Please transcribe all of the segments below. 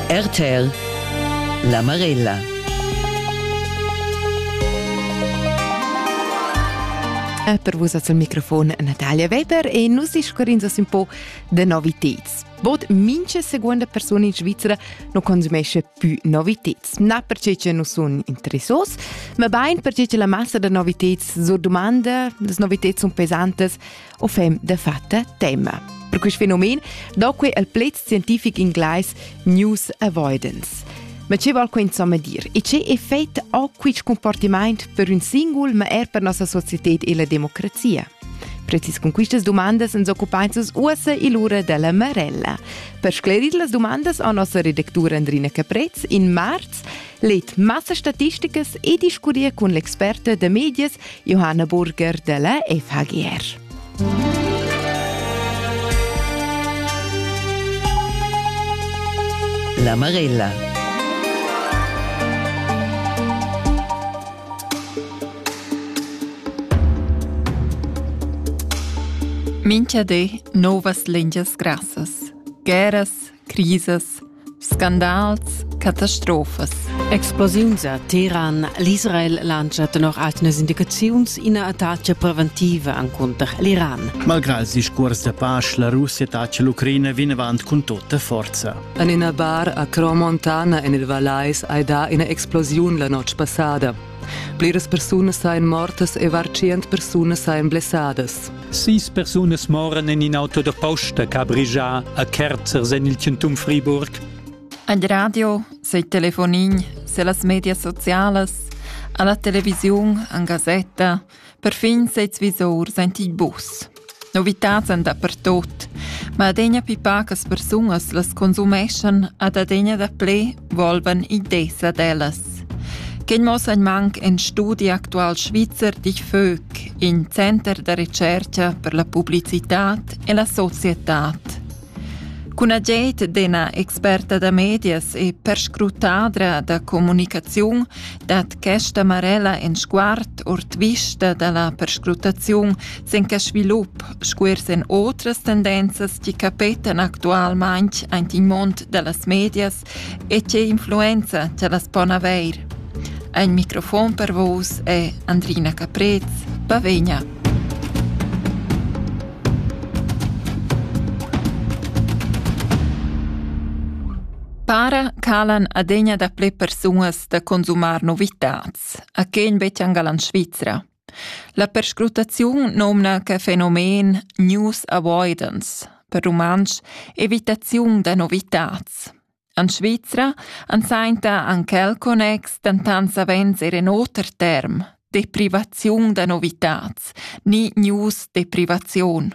RTL La Marella per vus al microfon Natalia Weber e nus discurrins un po de noviteds. Bod mince seconda persona in Svizzera non consumesce più noviteds. Na perché che non sono interessos, ma bain perché che la massa da noviteds so domanda, le noviteds sono pesantes, o fem de fatta tema. Per quest fenomen do que al pled scientific inglais news avoidance. Ma che val quint insomma dir? E che effect ha quist comportament per un singul, ma er per nossa società e la democrazia? Precis con quistas domandas ens occupainses uossa e l'ura della Marella. Per sclerir las domandas ha nossa redactura Andrina Caprez in marz Leet massastatisticas e discutir cun l'experta da medias Johanna Burger della FHGR. La Marella. Mincha di novas lingias grassas, guerras, crisas, Scandals, catastrofas. Explosiuns a Teheran. L'Israel lancia tenor altas indicaziuns ina attacca preventiva encunter l'Iran. Malgrà il discurs da pace, la Russia attacca l'Ucraina vinavant cun tutta forza. En ina bar a Cromontana en il Valais hai dà ina explosiun la notg passada. Pliras persunas ein mortas e var tschient persunas ein blessadas. Sis persunas moran en in auto da posta ch'ha brigià a Kerzers en il Centum Friburg. Ad radio, sei telefonin, se las medias socialas, alla televisiun, an gazzetta, Perfin seis visor sainti il bus. Novitats han dapertot, ma adegna pi pacas persunas las consumeschan ad adegna daplè volvan ideas ad ellas. Quel mossa in manc en studi actual Svizzer dich Vög, in center da recerca per la publicitat e la societad. Cun agid d'ina experta da medias e perscrutadra da communicaziun dat questa marella in sguard ord vista da la perscrutaziun sin quest svilup sco er sin otras tendenzas che capetan actualmain aint il mund da las medias E tge influenza che las pon avair. Ein microfon per vus è Andrina Caprez, Bavegna. Para calan adegna da ple persunas da consumar novitats, a quegn betg angalan Svizra. La perscrutaziun nomna que fenomen news avoidance, per rumantsch evitaziun da novitats. En Svizra han sainta anc el connex dentant savens er en oter term, deprivaziun da novitats, ni news deprivaziun.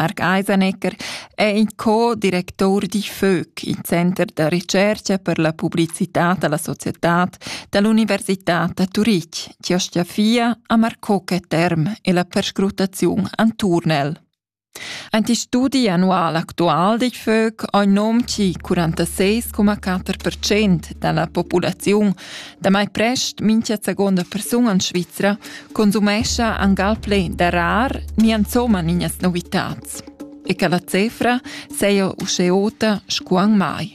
Marc Eisenecker è in co-directur di FÖC, il Center da ricerca per la pubblicità da la societad da l'Università da Turitg, chi ostia fia a Marcoke Term e la perscrutaziun Anturnel. Ein ti studi annual actual di FÖC ha il nome chi 46,4% dalla populaziun Damai prest mincha seguonda persuna in Svizra consumescha angal plé da rar ni insomma ninas novitats. E che la cifra seia usce ota scuan mai.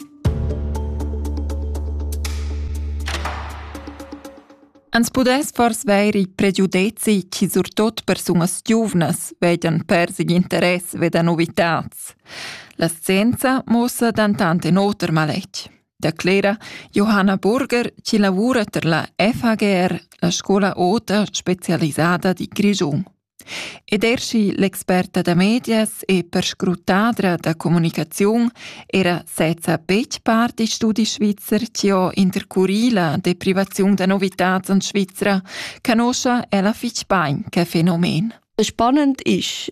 Ans pudess fors veir i pregiudezi chi surtot persunas giuvnas vedian persig interess ve da novitats. La scienza mossa dantant in oter maletg. declera Johanna Burger chi lavura ter la FHGR, la scola ota specialisada di Grischun. Ed er schi l'experta da medias e perscrutadra da comunicaziun era sezza betg part di studi svizzer ci ho intercurì la deprivaziun da novitats en Svizra, canoscia ella fitg bain che fenomen. Spannend ist,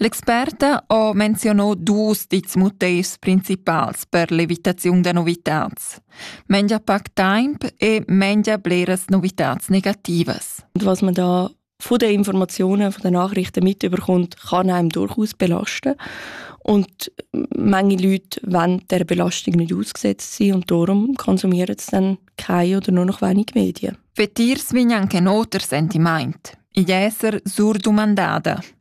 L'experta ha menzionà dus dits motivs principals per l'evitaziun da novitads. Mengia pac temp e mengia bleras novitads negativas. Und was man da von den Informationen, von den Nachrichten mitbekommt, kann einem durchaus belasten. Und manche Leute wollen der Belastung nicht ausgesetzt sein und darum konsumieren sie dann keine oder nur noch wenig Medien. Vetirs vegnan che noter sentiment. Igl esser surdumandada.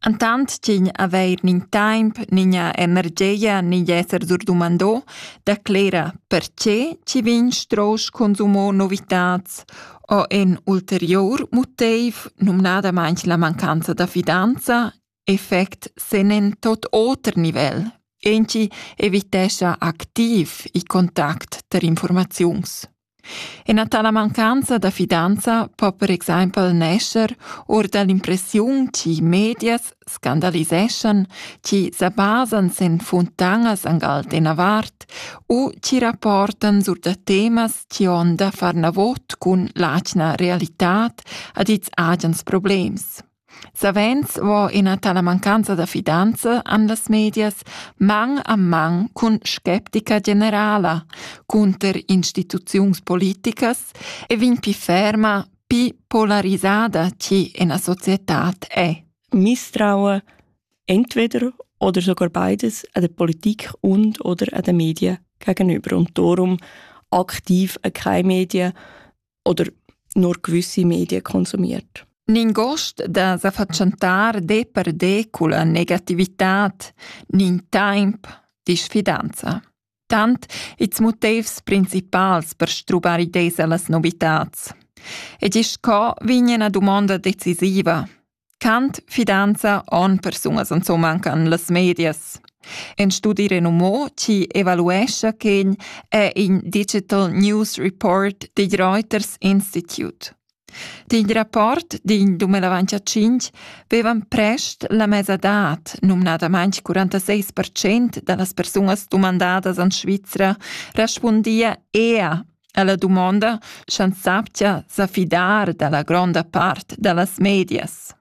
Entant ch'igl avair nin taimp, nigna energia ni d'esser durdomandò declera perche chi vegn strosch consumò novitats o ün ulteriur muteiv, numnadamaing la mancanza da fidanza, effect sen in tot oter nivel. Ünchi evitescha activ il contact tar informaziuns. Ina tala mancanza da fidanza po per exempel nescher or da l'impressiun chi medias scandaliseschan, chi sa basan sin funtanas angal d'ina vart u chi rapportan sur da temas chi hon da far navot cun l'atgna realitad ad ils agens problems. Savens vo ina tala mancanza da fidanza en las medias man a man cun sceptica generala cunter instituziuns politicas e vegn pli ferma, pli polarisada che ina societad è. Misstrauen entweder oder sogar beides an der Politik und oder an den Medien gegenüber und darum aktiv an keine Medien oder nur gewisse Medien konsumiert. Ningost da sa fatschentar de per de culla negativitad, nin temp, disfidanza. Tant its motivs principals per strubar idees allas novitats. Ed isch co vignen a domanda decisiva, Cant, fidanza, onn persunas insomma han las medias. In studi renumò chi evaluescha ch'in è in Digital News Report digl Reuters Institute. Digl rapport din 2005 vevan prest la mesadad, numnadamain 46% da las persunas dumandadas en Svizra, respundia ea Ella dumonda, sch'ans saptia sa fidar da la gronda part da las medias.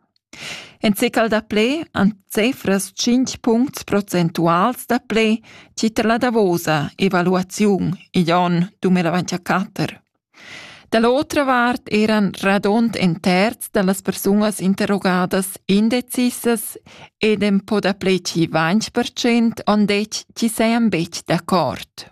En cecal da ple han cefras 5 puncts procentuals da ple tier la davosa evaluaziun igl onn 2024. Da l'otra vart eran radund en terz da las persunas interrogadas indecisas ed en po da ple 5% on det chi sean betg d'accord.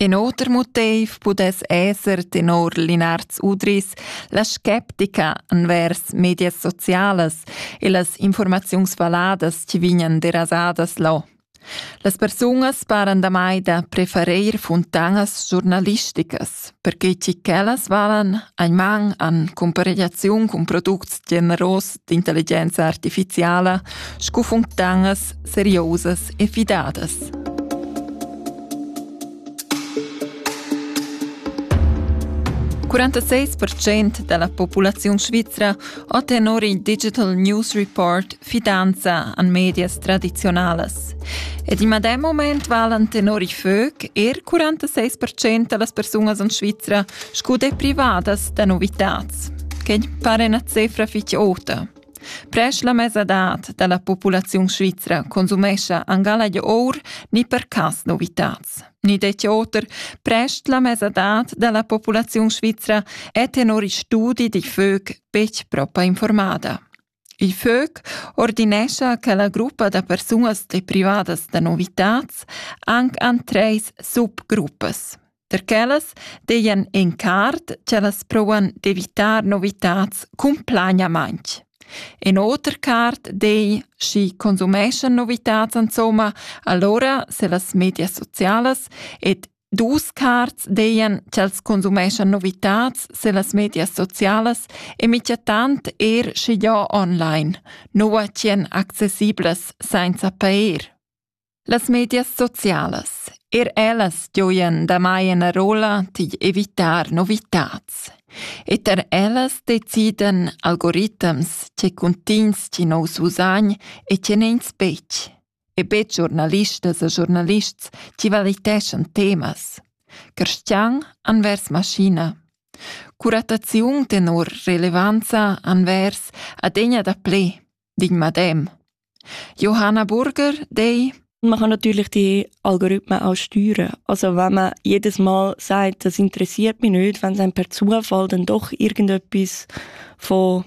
In oter motiv pudess esser tenor Linards Udris la sceptica envers medias socialas e las informaziuns valadas che vegnan derasadas là. Las persunas paran damai da preferir funtanas giornalisticas, perché che quellas valan ein man an comparegliaziun cun products generos d'intelligenza artificiala scu funtanas seriosas e fidadas. ...46% della popolazione svizera ha tenor il Digital News Report fidanza an medias tradizionalas. Ed in medem moment valen tenor i FÖC er 46% delle persone in Svizzera Scu dei privadas da novitats, che pare una cifra fitg ota. Presch la mesadad da la populaziun svizra consumescha angala di or ni per cas novitats. Ni detje oter, presch la mesadad da la populaziun svizra è tenor i studi di fög betg propa informada. Il FÖG ordinescha che la gruppa da persunas deprivadas da novitads anc han treis subgruppas. Per quellas dejan in card ch'ellas provan d'evitar novitads cumplagnamaintg. In oter card dei, schi consumeschan novitads insomma, allora se las medias socialas ed Dus cards deien ch'els consumeschan novitats se las medias socialas e michatant er sche ja online, nua ch'en accessiblas sainza pair. Las medias socialas, er ellas gioien damai ena rola tig evitar novitats. E ter ellas deciden algoritms che cuntins ci nous usagn e ce nen spec. e be giornalistas e giornalists chi valiteschan temas. Cristian anvers maschina. Curattaziun tenor relevanza anvers adegna da ple, dig madem. Johanna Burger, dei Man kann natürlich die Algorithmen auch steuern. Also wenn man jedes Mal sagt, das interessiert mich nicht, wenn es einem per Zufall dann doch irgendetwas von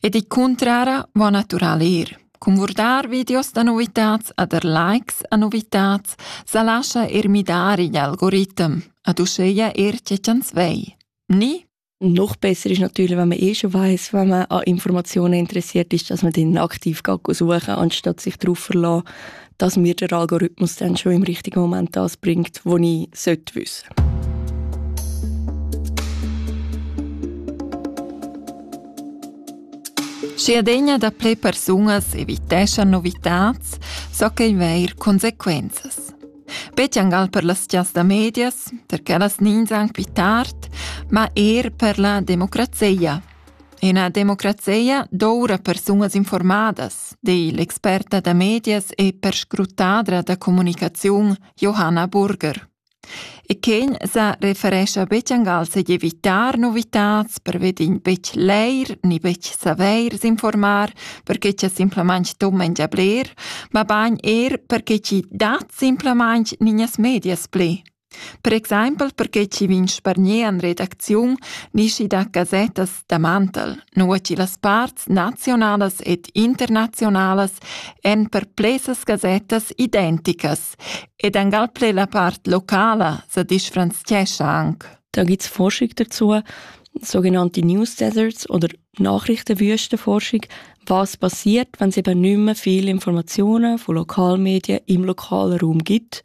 E di cuntrara vo natural ir. Cun vurdar videos da novitats ed er likes a novitats sa lascha eir midar igl algoritm, ad uscheia er tge ch'ans vei. Ni? Noch besser ist natürlich, wenn man eh schon weiß, wenn man an Informationen interessiert ist, dass man dann aktiv suchen kann, anstatt sich darauf verlassen, dass mir der Algorithmus dann schon im richtigen Moment das bringt, was ich sollte wissen Si adegna da ple persunas eviteschan novitats, so ch'ei veir consequenzas. Betjangal per las chas da medias, perché las nins anc pi tard, ma er per la democrazia. Ina democrazia doura persunas informadas, di l'experta da medias e perscrutadra da comunicaziun Johanna Burger. E quin sa referescha betg se d'evitar novitats perved in betg leir ni betg saveir s'informar perché cha simplamaing tummen già bler, ma bagn er perché chi dat simplamaing ninas medias ple. Per exaimpel perquei chi vegn spargnì en redacziun nischi da gasettas da mantel, nua chi las parts nazionalas ed internazionalas èn per plesas gasettas identicas ed angal ple la part locala sa disfranziescha anc. Da gibt es Forschung dazu, sogenannte News Deserts oder Nachrichtenwüstenforschung, was passiert, wenn es eben nicht mehr viele Informationen von Lokalmedien im lokalen Raum gibt.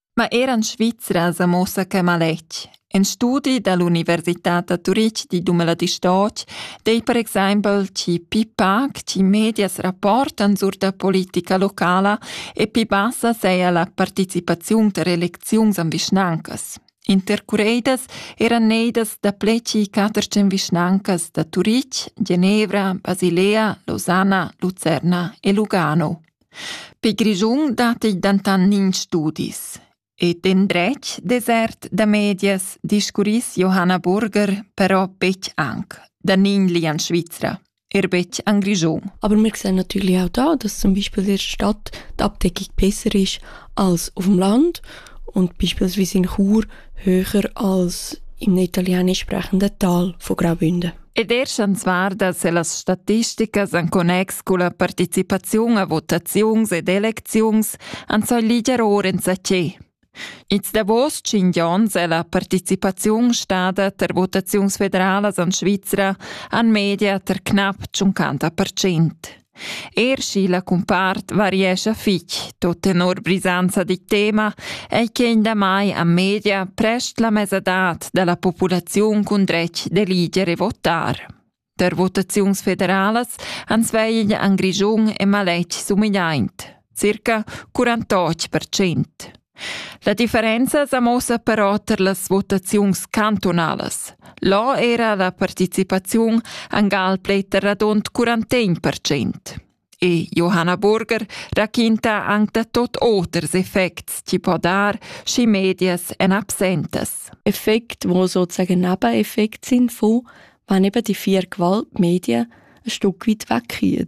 Ma era en Svizra sa muossa quai maletg. In studi da l'Universitad da Turitg di Dumeladistoc dei per exempel chi pi pac chi medias rapportan sur da politica locala e pi bassa seia la participaziun ter elecziuns am vischnancas. Intercureidas eran neidas da pleci catercen vischnancas da Turitg, Genevra, Basilea, Losanna, Lucerna e Lugano. Per Grischun datti dentant nins studis. E d'endretg desert da medias discurriss Johanna Burger però betg anc, da nigli en Svizra, er betg en Grischun. Aber wir sehen natürlich auch da, dass zum Beispiel die Stadt die Abdeckung besser ist als auf dem Land und beispielsweise in Chur höher als im italienisch sprechenden Tal von Graubünden. Ed er schans varda se las statisticas en connex culla participaziun a votaziuns ed elecziuns han so liger ora enzaché. Ils davos tschinch ons è la participaziun stada ter votaziuns federalas en Svizra an media ter knap 50%. Er schi la cumpart variescha fitg, tot tenor brisanza dic tema, ei quein damai a media prest la mesadad dalla populaziun cun dretg d'eliger e votar. Der votaziuns federalas han svegl an Grischun e maletg sumidaint, circa 48%. La differenza sa muossa però tar las votaziuns cantunalas. Là era la participaziun angal gal plei radund 41 percent. E Johanna Burger raquinta anc da tot oters effects chi po dar, schi medias en absentas. Effekt, wo sozusagen Nebeneffekt sind von, wenn eben die vier Gewaltmedien ein Stück weit wegkommen.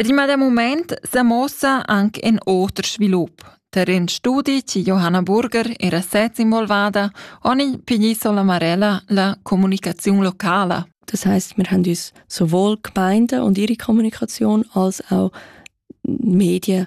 Ed il medem mument sa muossa anc in oter svilup. Tar in studi chi Johanna Burger era sez involvada, han i pigli sola marella la comunicaziun locala. Das heißt, wir haben uns sowohl Gemeinde und ihre Kommunikation als auch Medien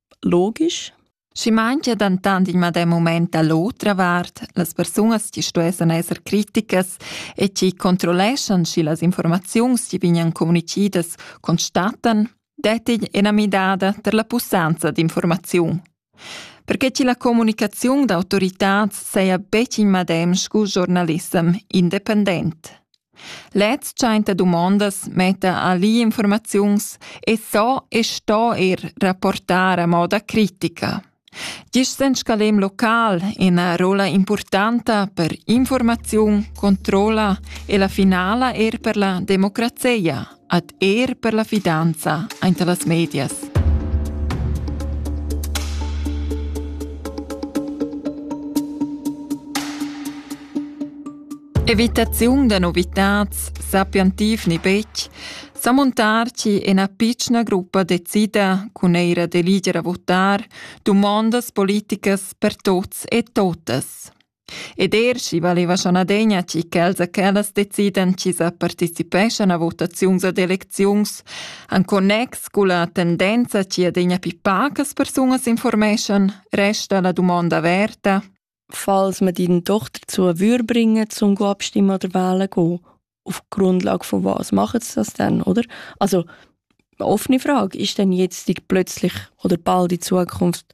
Logisch. Schi manchia dentant in medem mument da l'otra vart, las persunas chi stuessan esser criticas e chi controlleschan, schi las informaziuns chi vegnan communichidas constatan, dettigl ena midada ter la pussanza d'informaziun. Perché che la comunicaziun d'autoritats seia betg in medem scu giornalissem independent. Lez tschenta dumondas, metta ali informaziuns e so e sto er rapportar a moda critica. Gist en scalem local ina rolla importanta per informaziun, controlla e la finala er per la democrazia. ad er per la fidanza aint las medias. Evitaziun da novitads sappian tifni betg, sa montarci en a pitschna gruppa decida cun eira d'eliger a votar dumondas politicas per tots e totas. Ed er sch'i valeva schon adegna tgi ch'els e quellas decidan chi sa participeschan a votaziuns ad elecziuns en connex culla tendenza chi adegna pi pacas persunas informeschan, resta la dumonda averta. Falls man die doch dazu würde bringen, zum abstimmen oder wählen gehen, auf Grundlage von was machen sie das denn, oder? Also, eine offene Frage, ist denn jetzt plötzlich oder bald in Zukunft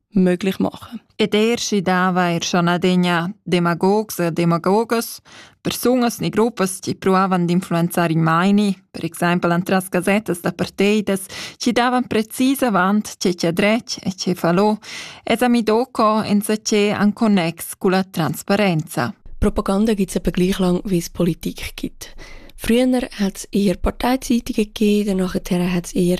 möglich machen. Ed er si dava er schon adegna demagogs e demagogas, persunas ni gruppas che provavan d'influenzare i maini, per exempel antras gazettas da parteidas, ci davan precis avant ce c'è drech e ce falò, es ami doco enza ce an connex cu la transparenza. Propaganda gibt es etwa gleich lang, wie es Politik gibt. Früher hat es eher Parteizeitung gegeben, danach hat es eher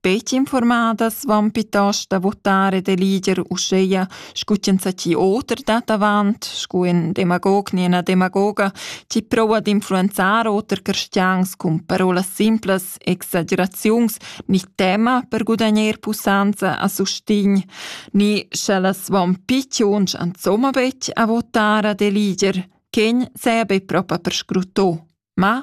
Betg informadas van piitost a votar e da liger uscheia scu ch'enzatgi oter dat avant, scu ün demagog ni ena demagoga, chi proua d'influenzar oter cristians cun parolas simplas, exageraziuns ni tema per gudagner pussanza a sustign, ni sch'ellas van pit lunsch ansomma betg a votar ad eliger, ch'egn seia be propa perscrutto. Ma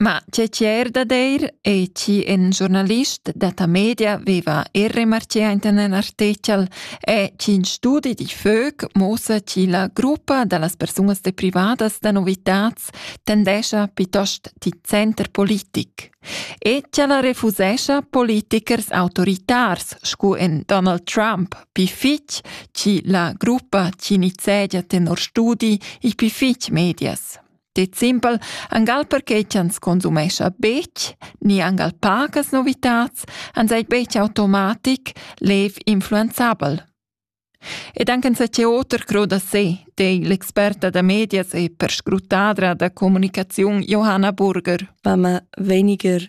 Ma tge tier da deir ei chi in giornalist detta media veva er remarchea inta ün artichel è ch'in studi di Fög muossa chi la gruppa da las persunas deprivadas da novitats tendescha piuttost ti center politic. E ch'ella refusescha politichers autoritars scu in Donald Trump pi fitg chi la gruppa chi nizegia tenor studi i pi fitg medias. Det simpel, angal perché ch'ans consumescha betg, ni angal pagas novitats, ans ei betg automatic lev influenzabel. Ed anche se c'è oter cro da sé, dei l'experta da medias e perscrutadra da comunicaziun Johanna Burger. Wenn man weniger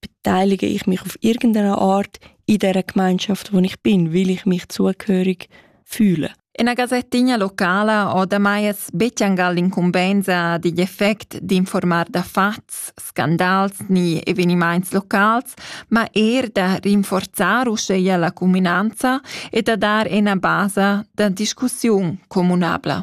beteilige ich mich auf irgendeine Art in der Gemeinschaft, wo ich bin, weil ich mich zugehörig fühle. Una gasettigna locala o damai es bettiangal l'incumbenza digl effect d'informar da fats, scandals ni evenimaints locals, ma er da rinforzar uscheia la cuminanza e da dar ena basa da discussiun comunabla.